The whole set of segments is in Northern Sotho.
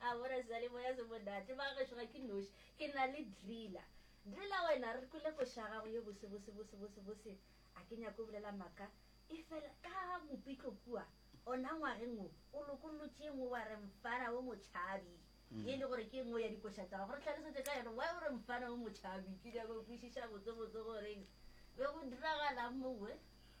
A bona seyalemoya se monate. Bagešo ga ke noši. Ke na le Driller. Driller wena re kwele koša ya gago ye bose bose bose bose bose. A ke nyake o bolela maka. Efela ka mopitlo kua ona ngwageng wo o lokollotše e nngwe wa re mfana wo motšhabi. Ye e le gore ke e nngwe ya dikoša tša gago. Re hlalosetše ka yona. Why o re mfana wo motšhabi? Ke nyaka go kwešiša botse botse gore be go diragalang mongwe.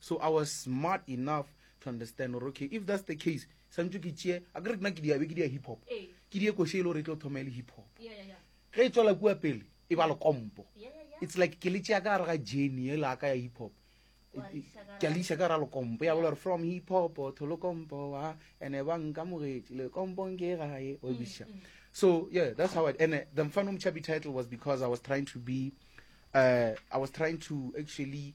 so i was smart enough to understand gore okay if that's the case santse ke tšee a kere nna ke diabe ke dia hip hop ke die koshe e le gore e tlo thoma e le hip hop ge e tswela kua pele e ba lekompo it's like ke le tšea ka gare ga jeny e laka ya hip hop ke a le isa ka gare ga lekompo ya bola gore from hip hop to lekompo a ene ba nkamogetše lekompong ke gae o bisa mm, mm. so yeah that's how i and uh, the mfanomchabi title was because i was trying to be uh, i was trying to actually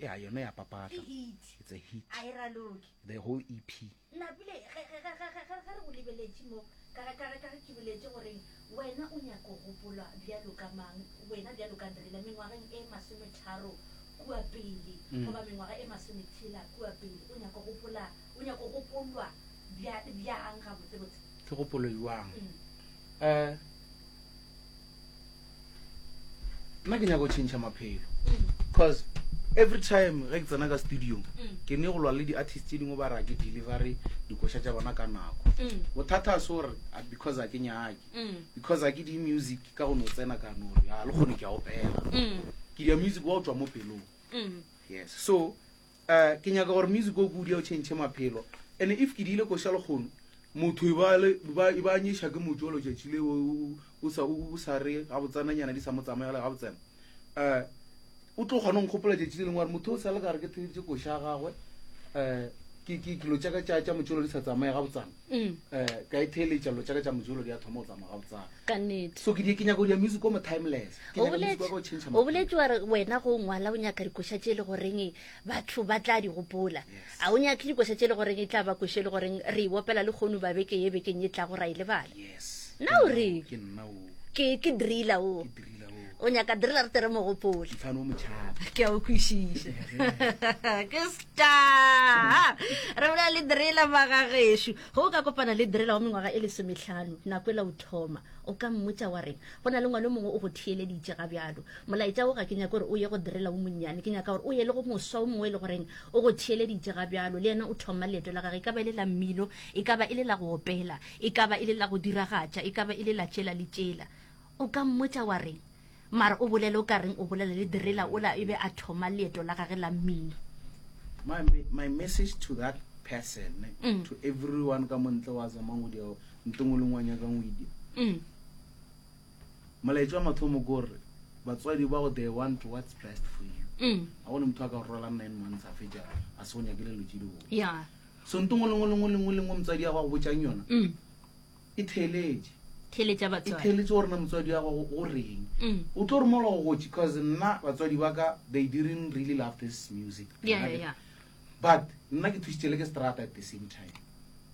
ya yone ya papatla it's a hit a e raloke the whole ep napile ge ge ge ge ge re go lebeletše mo ka ka ka ka ke boletse gore wena o nyako gopolwa bjalo ka mang wena bjalo ka ndrela mengwageng e masome tharo kua pele mm. goba mengwaga e masome tshela kua pele o nyako gopola o nyako gopolwa bjang ga botse botse ke gopolo yuang mm. eh nna ke nyaka go tšhentšha maphelo because every time ge ke tsena ka studiong mm. ke ne go lwa le di-artist tse dingwe ba ra ke delivery dikoša tša bona ka nako mm. bothata a sore ah, because a ke nyake mm. because a ke di music ka gone o tsena ka nore a ah, le kgone ke a opela ke dia music wa o tswa mo pelong yes so Uh, ke nyaka gore music o kudia o tšhentšhe maphelo ene if ke diile koša lekgono motho e ba le ba e ba nyesha ke motho lo tšatši le o sa o sa re ga botsana nyana di sa mo tsamaya le ga botsana eh o tlo gona ngkgopola tšatši le lengwe motho o sa le ka re ke theditše koša gagwe eh ke ke ke lo tšaka tša tša motšolo di sa tsamaya ga botsana um ka e theeletša lo tsaka tša mojolo di a thoma go tsa morago tsa ka nnete so ke di ke nyaka go dia music o mo timeless ke O nyaka music wa ka o boletše- change o boletše wa re wena go ngwala o nyaka dikoša tše e le goreng batho ba tla di gopola Yes. a o nyake dikoša tše e le goreng e tla ba koša e le goreng re e opela le kgono ba beke ye bekeng e tlago ra e lebala yes Na o reng? ke nna o ke ke driller o o nyaka direla re tere mogopole ke a o kwešiše ke star re bolela le direla magagešo ge o ka kopana le direla wa mengwaga e lesometlhano nako e la o thoma o ka mmotsa wa reng go na le ngwana mongwe o go theeleditše ga bjalo molaetša o ga ke nyaka gore o ye go direla o monnyane ke nyaka gore o ye le go moswa o mongwe e le goreng o go theeleditše ga bjalo le yena o thoma leeto la gage e ka ba e le la mmino e ka ba e le la go opela e ka ba e le la go diragatša e ka ba e le la tšela le tšela O ka mmotša wa re, Mara o bolele o ka reng o bolela le Direla ola e be a thoma leeto la gage la mmino? My, my message to that person, mm. to everyone ka montle wa zamang o diao ntong o leng wa nyakang o idia mm. molaetša wa mathomo ke gore batswadi ba go they want what's best for you mm. a gone motho a ka rolang nine months a fetša a se go nyakele lo tše di bone yeah. so ntong o leng o leng o leng o leng o motsadi ya go a go botšang yona mm. e theeletše theeletša batswadi e theeletše gore na motswadi ya gago o reng mm. o tlo romela go gotši because nna batswadi ba ka they didn't really love this music yeah, yeah, yeah. but nna ke thusitše le ke strata at the same time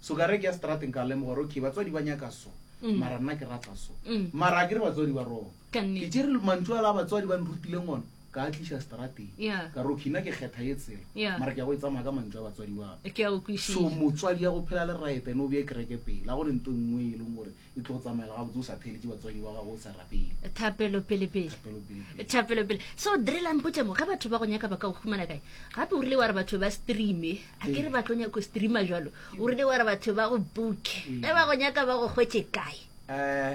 so ka re ke ya strateng ka lemoga gore okay batswadi ba nyaka so mm. mara nna ke rata so mm. mara a ke re batswadi ba rona ke tše re mantšu a la batswadi ba nrutileng ona ka a tliša strateng Yeah. ka roki nna ke kgetha ye tsela Yeah. mara ke ya go e tsamaya ka mantšu a batswadi ba ka ke a o so kwešiša motswadi ya go phela le right ene o bee kereke pele ga gone nto nngwe e leng gore e tlo go tsamaela gabotse o sa theeletše batswadi ba gago o sa rapele thapelo pelepele Thapelo pelepele. thapelo pele so drela mpotse mo ge batho ba go nyaka ba ka go humana kae gape o rile wa re batho ba streame a ke re ba tlo nyako streama jalo o rile wa re batho ba go booke ge ba go nyaka ba go hwetse kae um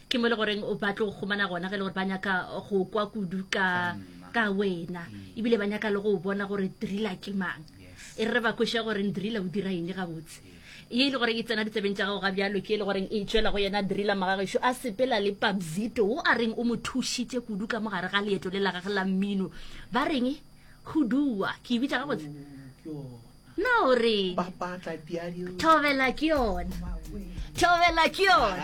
ke mo e le goreng ba tlo gomana gona ge e le gore ba nyaka go kwa kudu ka ka wena mm. ebile ba nyaka le go bona gore drila ke mang e re ba kwešwa gore drila o dira eng gabotse ye e le goreng e tsena ditsebeng tša gago ga bjalo ke e le goreng e tswela go yena drila magagešo a sepela le pabzito o a reng o mo thušitše kudu ka mogare ga leeto le la gage la mmino ba reng go dua ke e bitsa gabotse na o re thobela ke yone thobela ke yone